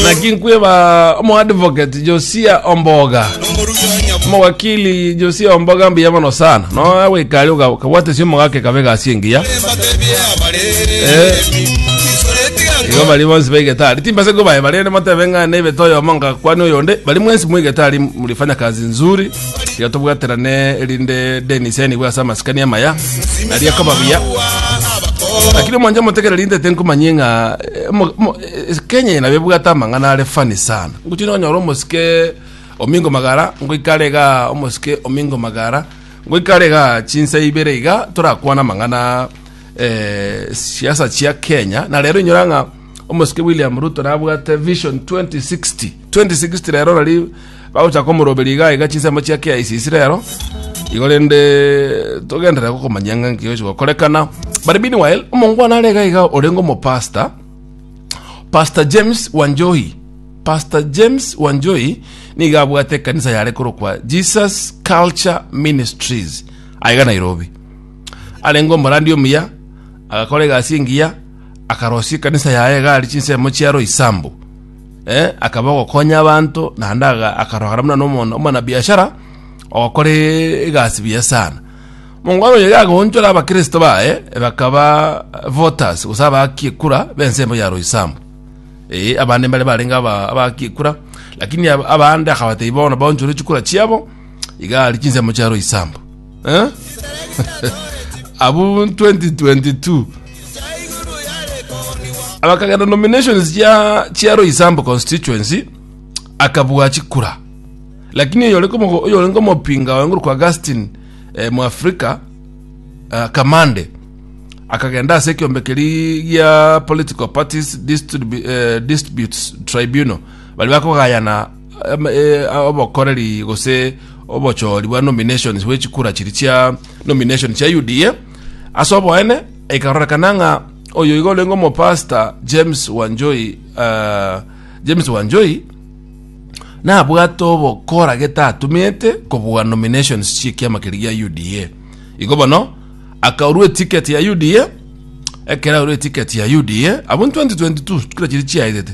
naki nkweba omoadvocate josia omboga omowakili josia omboga mbuya mono sana no gwikari ukabwatesia omogake kabe gasi engiya igo bari bonsi baigetari timbase kubaye bari ende motebe ng'a nebete oyomo nga kwani oyonde bari mwensi mwigetari murifanya kazi nzuri iga tobwaterane erinde denis enigwe ase amasikani amaya aria koba buya lakini omwanje omotegereri intete nkomanyie ng'a Eh, mo- mo- eh, kenya ina bebwate amang'ana are fani sana ngochi nonyora omosike omingo magara ngoikare iga omosike omingo magara ngoikare iga chinsa ibere iga torakwana amang'ana eh, siasa chia kenya na rero inyora ng'a omosike william ruto nabwate vision 2060 2060 rero rari bagochaka omoroberia iga iga chinsemo chia KICC rero igo rende togenderera gokomanyia ng'a nki gochi gokorekana but meanwhile omongwana are iga iga orenge omopasta pastor james wanjohi pastor james wanjohi niga abwate ekanisa yare korokwa jesus culture ministries aiga nairobi arenge omorandi omuya agakora egasi engiya akarosia ekanisa yaye iga ari chinsemo chia roisambu Eh, akaba ogokonya abanto, naende aga- akarogera buna nomo- omwanabiashara ogokora e- egasi buya sana mongwana oyo yagoonchora abakristo baye bakaba voters gose abaakia ekura b'ense emo ya roysambu ee abande mbare barenge aba- abaakia ekura lakini ab- abande akabatebia bono baonchore chikura chiabo iga aria chinsemo chia roysambu Eh? abu 2022 abakagenda nominations chia chia roisambo constituency akabua chikura lakini oyore komo- oyore ngomopinga wenguru kwa gastin eh, mu afrika eh, kamande akagenda ase ekiombe keri gia political parties distribu- eh, disputes tribunal bari bakogayana obokoreri gose obochori bwa nominations bwe chikura chiri chia nomination chia UDA ase oboene ikarorekana ng'a oyo iga orenge omopasta James Wanjoi uh, James Wanjoi nabwate obokora getatumete kobua nominations chi'ekiama keri gia UDA igo bono akaurwa etiketi ya UDA ekero aurwa etiketi ya UDA abwo 2022 kura chiri chiaetete